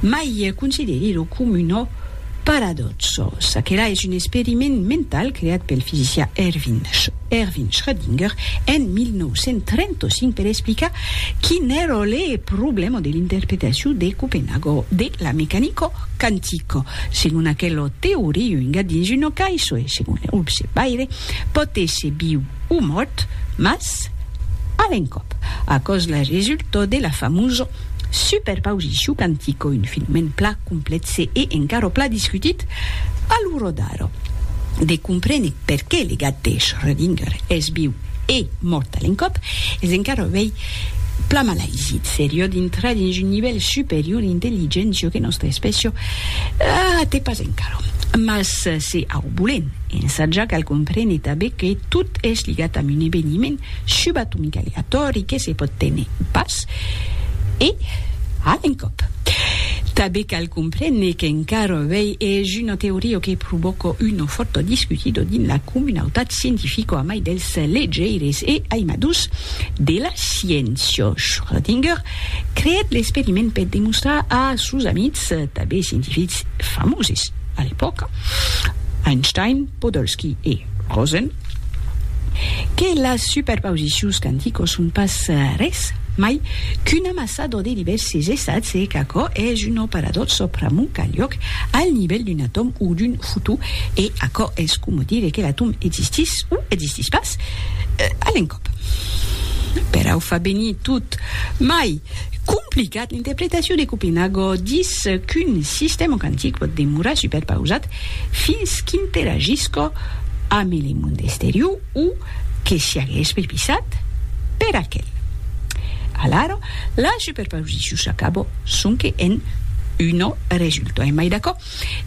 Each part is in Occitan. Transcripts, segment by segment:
Mai consideri lo comuno paradòxo. Çaquelà es un experiment mental creat pel fisicià Erwin Schrödinger en 1935 per explicar quin èra le problèma de l'interpretacion de Copenhago de la mecanico quantico. Segon aquela teoria, un gat dins una caissa, e segon l'observaire, pòt èsser viu o mòrt, mas a l'encòp. Aquò's la resulta de la famosa Super pausicu cantico, un fenomèn pla complèxe e encara pla discutit a lo rodar de comprene perqué le gat de Schrödinger es viu e mòrt a l'encòp es encara uèi pla mal aisit. Serió dintrar dins un nivèl superior d'intelligéncia que nòstra espècia a te pas encara. Mas se au bolen ensatjar cal comprene tanben que tot es ligat amb un eveniment subatomic aleatòri que se pòt téner pas, e a l'encòp. Tanben cal comprene qu'encara avei es una teoria que provòca una fòrta discutida dins la comunautat scientifica amai dels legeires e aimadors de la sciéncia. Schrödinger creèt l'experiment per demostrar a sos amics, tanben scientifics famoses a l'epòca, Einstein, Podolsky e Rosen, Que las superpausicions quanticos son pas res mai qu'un amassador de divèrses estats e qu'aquò es un operador pr'amor qu'alhòc al nivèl d'un atòm o d'un fotó e aquò es coma dire que l'atòm existís o existís pas a l'encòp. Perau fa venir tot mai Complicat, l'interpretacion de Copenhago dis qu'un sistèma quantic pòt demorar superpausat fins qu'interagisca amb le mond exterior o que siague espervisat per aquel. Alara, la superpausicion s'acaba sonque en una resulta. Èm mai d'acò?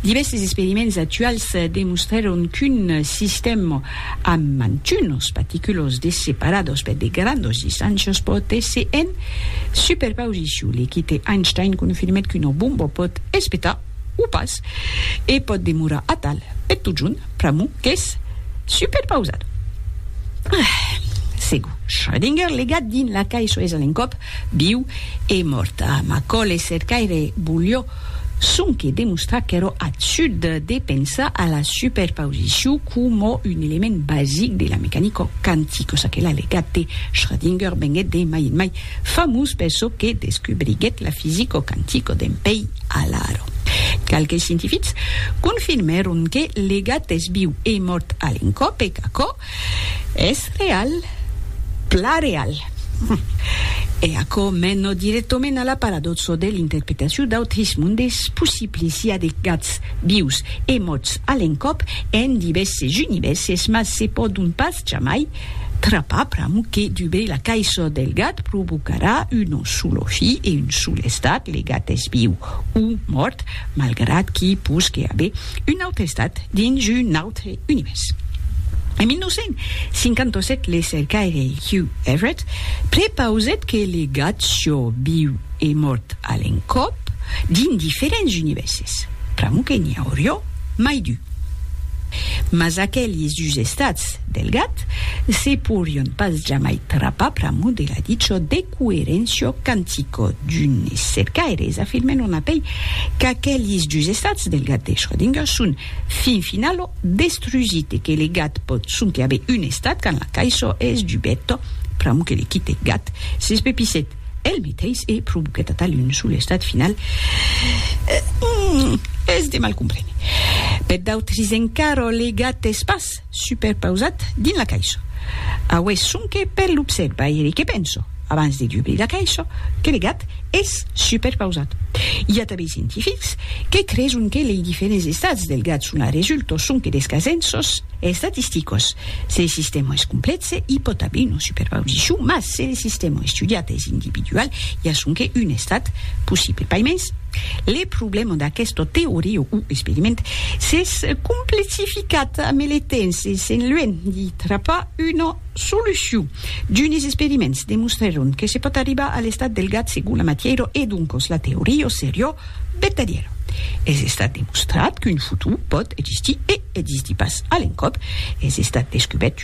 Divèrses experiments actuals demostrèron qu'un sistèma amb mantunos paticulos de separados per de grandos distàncios pòt èsser en superpausicion. L'equip de Einstein confirmèt qu'una bomba pòt espetar o pas e pòt demorar atal per totjorn pr'amor qu'es superpausada. Segur, Schrödinger legat dins la caissa es a l'encòp viu e mòrta. Macòl, es cercaire, volió sonque demostrar qu'èro absurd de pensar a la superpausicion coma un element basic de la mecanica quantica, ça que l'allegat de Schrödinger venguèt de mai en mai famós per çò que descobriguèt la fisica quantica dempèi alara. Qualques scientifics confirmèron que l'egat es viu e mòrt a l'encòp e qu'aquò Es real, plan real. E aquò mena dirèctament a la paradòxa de l'interpretacion d'autris mondes possibli siá de gats vius e mòrts a l'encòp en divèrses univèrses mas se pòdon pas jamai trapar pr'amor que dubrir la caissa del gat provocarà un solo fi e un sol estat, le gat es viu o mòrt malgrat qu'i posque aver un autre estat dins un autre Univers. En 1957 le cercaire Hugh Everett prepausèt que le gat siò viu e mòrt a l'encòp dins diferents univèrses, pr'amor que n'i aurió mai d'u. Mas aquelis dus estats del gat se pourrion pas jamai trapar pr'amor de la dichò decoeréncia quantica d'unes cercaires afirmèron apèi qu'aquelis dus estats del gat de Schrödinger son Fin finalo, destrusite que le gat pòt sonque aver un estat quand la caisò es dubeta, pr'amor que le quite gat s'espepissèt el meteis e provoquèt atal un sol estat final, es de mal comprene. Per d'autres encara, le gat es pas. superpausat dins la caisha. Aué sonque per l'observaire que penso, abans de dubrir la caisha, que le gat es superpausat. I a tanben scientifics que creson que lei diferents estats del gat son a resulto sonque des casenços estatisticos. Se le sistèma es complèxe, i pòt aver una superpausicion, mas se le sistèma estudiat es individual, i a sonque un estat possible. Paimens. Le problèma d'aquesta teoria o experiment s'es complexificat ame le temps e s'en luènh di trapar una solucion. D'unes experiments demostrèron que se pòt arribar a l'estat del gat segon la matièra e doncas la teoria seriá vertadièra. Es estat demostrat qu'un futur pòt existir e existir pas a l'encòp. Es estat descubèrt